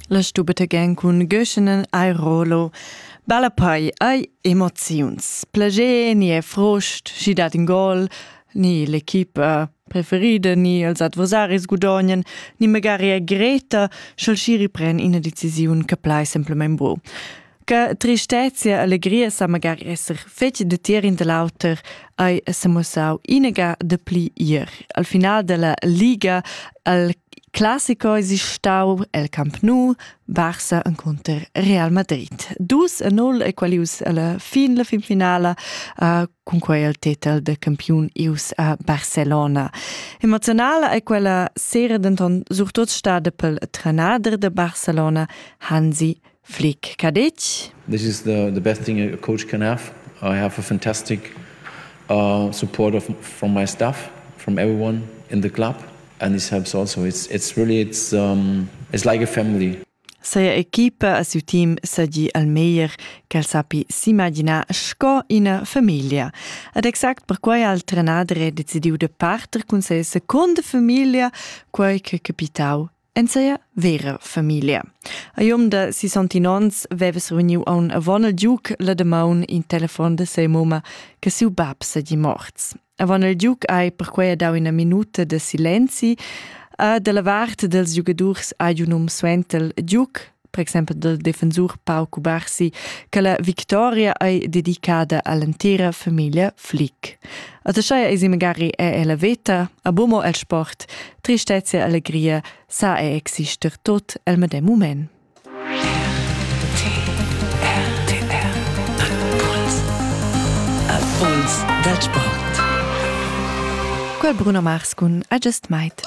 La stubete gen cun Göschenen ai Rolo. Balla pai ai emoziuns. Plagé ni è frost, si dat in gol, ni l'equipa preferida ni els adversaris gudognen, ni magari è Greta, sch'el si ripren ina decisiun che plai semplament bu. Che tristezia e legria sa magari esser fetg detier in da l'auter hai semussau inega de pli ier. Al final della Liga al classico esistau el Camp Nou, Barça incontro Real Madrid. Dus a null e qualius alla fin la finfinala uh, con quei il titel de campiun ius a Barcelona. Emozionala è quella sera denton surtut stada pel tranader de Barcelona Hansi Flick Cadetsch. This is the, the best thing a coach can have. I have a fantastic uh, support of, from my staff, from everyone in the club, and this helps also. It's it's really it's um, it's like a family. Seia equipa a siu team segi al meglier ch'el sappi s'imaginar sco ina famiglia. Ed exact perquai ha il trenader decidiu de parter cun ses secunda famiglia, quei che capitau En seia vera familia. A iom da 60 ons veves reuniu aun avon il Duke la demaun in telefon de sei moma che siu bab segi morts. Avon il Duke hai perquei dau ina minuta de silenzi a de la vart dels giugadurs ha un um suentel Duke per exempel dal defensur Pau Cubarsi, che la victoria ei dedicada all'entira famiglia Flick. A Taschaia eisi magari è la veta, a Bomo el sport, tristezia e allegria sa è exister tot el medem moment. Impuls dal sport. Quel Bruno Mars cun Adjust Might.